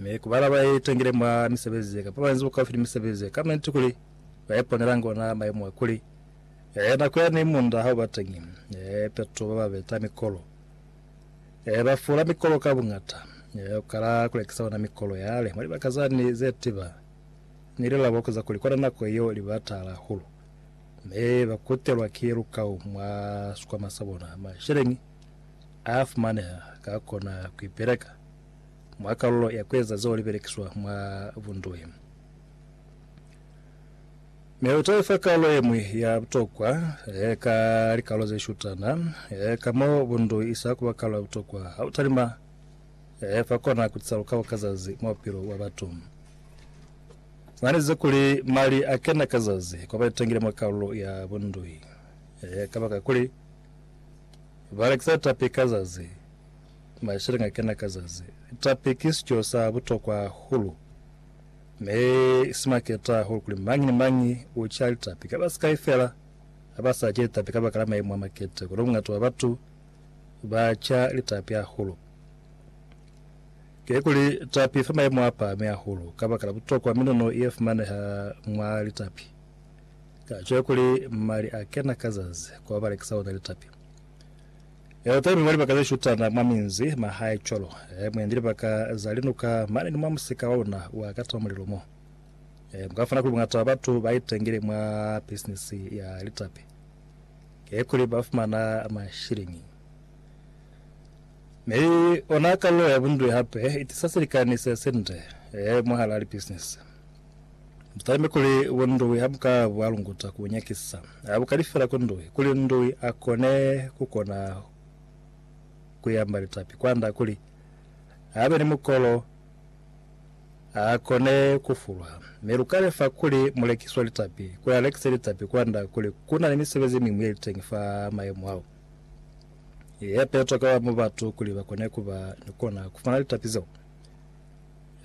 Mi ku bala ba itangile mwa misebezi ye, kamba ba inzi bukaufi ni misebezi ye, ka manti kuli ba iponelangi ona maimo a kuli, eh, nako yani munda ha u ba teñi, eh, peto ba ba beta mikolo, eh, ba fula mikolo ka buñata, eh, ku kala ku lekisa ona mikolo yale mwa libaka zani ze tiba, ni lila boko za kuli kona nako yeo li ba taala hahulu, mi ba kutelwa ki lukau mwa sikwama sa bona, masheleñi, Afumaneha ka kona kuipeleka mwa kalulo ya kueza zeo libelekiswa mwa bunduhi. Mi utaifa kalulo yemwi ya butokwa ka likalulo zeshutana, ka mo bunduhi isa kuba kalulo ya butokwa hautalima fa kona kutisa lukabo ka zazi mwa bupilo bwa batu. Zananize kuli mali akena ka zazi kwa baitangile mwa kalulo ya bunduhi kabakakuli Ba lekisa tapi ka zazi, masheleñi a kena ka zazi. Tapi ki sico sa butokwa hahulu, mi si maketa hahulu kuli mañi ni mañi u ca litapi. Ka ba sikai fela ha ba sa ce litapi kabaka la maimu a maketa, kono bungata bwa batu ba ca litapi hahulu. Kikuli tapi fa maimu a pahami hahulu kabakala butokwa miluno ye fumaneha mwa litapi. Ka cwale kuli mali a kena ka zazi kwa ba lekisa ona litapi. Eo teli mwa libaka ze shutana mwa minzi ma hae cwalo. E mwendi libaka za linuka mane ni mwa musika wa una wa kata mulilo mo. E mu ka fumana kuli bungata bwa batu ba itengile mwa bisinisi ya litapi. Ke kuli ba fumana mashilingi. Mi ona kalulo ya bunduli hape i tisa silikani se sinde e mwahal'a libisinisi. Butambi kuli bo Ndoi a bu ka bu alunguta ku bu nyakisisa. A bu kali fela ku Ndoi, kuli Ndoi a kone ku kona ku yamba litapi kwanda kuli a be ni mukolo, a kone ku fulwa. Mi lu ka lefa kuli mulekisi wa litapi kuli a lekise litapi kwanda kuli ku na ni misebezi miñwi ye li teñi fa mayemo ao ye petwa ka ba batu kuli ba kone ku ba ni kona ku fumana litapi zeo.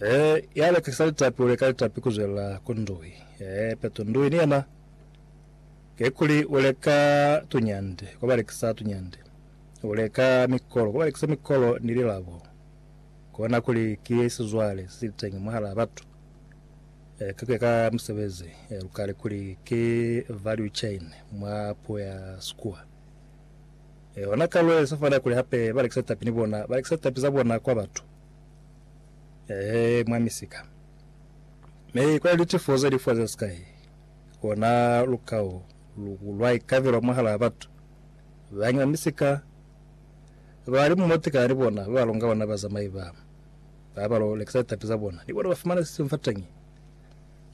Ee, ya lekisa litapi u leka litapi ku zwelela ku ndui. Ee, peto ndui ni yena, kikuli u leka tunyande kwa ba lekisa tunyande, u leka mikolo kwa ba lekisa mikolo ni lilabo. Kona kuli ki sizwale se sili teñi mwahalaa batu, ee, ka ku ya ka misebezi, ee, lu kali kuli ki value chain mwa puo ya Sikuwa. Ee, ona ka lwe sa fana kuli hape ba lekisa litapi ni bona, ba lekisa litapi za bona kwa batu. Ee, mwa misika. Mi kwa litifo ze lifwa ze sikai, kona lukao lu lwa ikavelwa mwahalaa batu. Bañi ba misika ba li mumo tekana ni bona, ba ba longa bona bazamai ba, ba ba lo lekisa litapi za bona, ni bona ba fumana sisimu fateñi.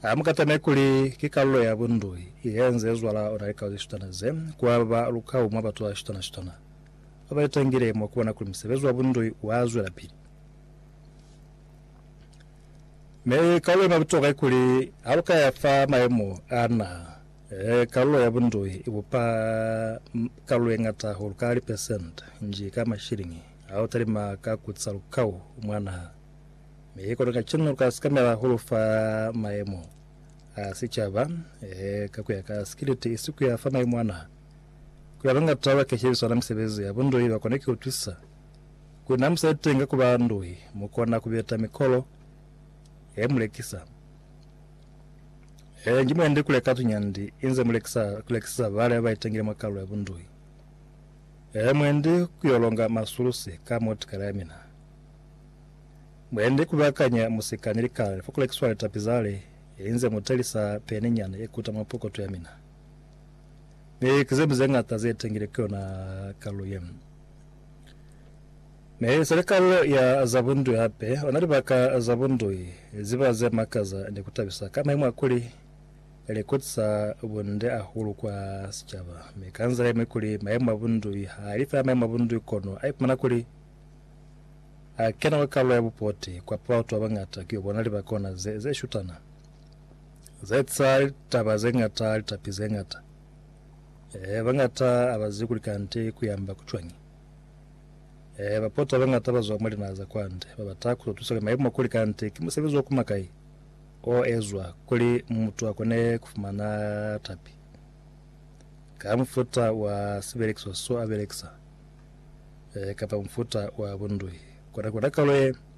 Ha mu katamei kuli ki kalulo ya bundui ye nze zwala ona likao ze shutana ze, kwa ba lukao mwa batu ba shutana-shutana. ba ba litangile mwa ku bona kuli musebezi wa bundoi u a zwelapili. Mi kalulo ye ma butokwa ki kuli, ha lu ka ya fa mayemo a naha, kalulo ya bundoi i bupa kalulo ye ñata hahulu ka lipesente nji ka mashiliñi ha u talima ka ku ca lukau mwa naha. Mi kono ka cina lu ka sikamela hahulu fa mayemo a sicaba, ka ku ya ka sikiliti, isi ku ya fa mayemo a naha. Kuli abangata ba ke shebiswa na misebezi ya bunduhi ba kone kiutwisisa kuli na musa itenga kuba nduhi mu kona kubeta mikolo ya mulekisa. Ee, nji mwendi kule ka tunyandi inze mulekisa kulekisisa bale ba itengile mwa kalulo ya bunduhi. Ee, mwendi kuyo longa masulusi ka motikala ya mina. Mwendi kubakanya musika ni likale fa kulekiswa litapi zale inze mutelisa peni nyana ye kuta mwa pokoto ya mina. Mi ki zemi zeñata zetengile ku yona kalu ye. Mi seli kalu ya za bundui hape, ona libaka za bundui ziba ze makaza ni ku tabisa ka maimo a kuli li kutisa bunde ahulu kwa sicaba, mi ka nzila yeñwi kuli maimo a bundui ha li fela maimo a bundui kono a ipumana kuli a kena kwa kalu ya bupoti kwa pa batu babañata ku yo bona libaka ona ze shutana. Zaetsa litaba zeñata, litapi zeñata. Eehe, bañata abazi kuli kanti kuyamba kucwañi. Eehe, bapota bañata bazwa mwa linaha za kwande, babata kuzo tusa kuli maimo kuli kanti ki musebezi wa kuma kai o ezwa kuli mutu akone kufumana tapi ka mufuta wa sibelekiswa so abelekisa, eehe, kapa mufuta wa bunduhi. Kona, kona kalo ye.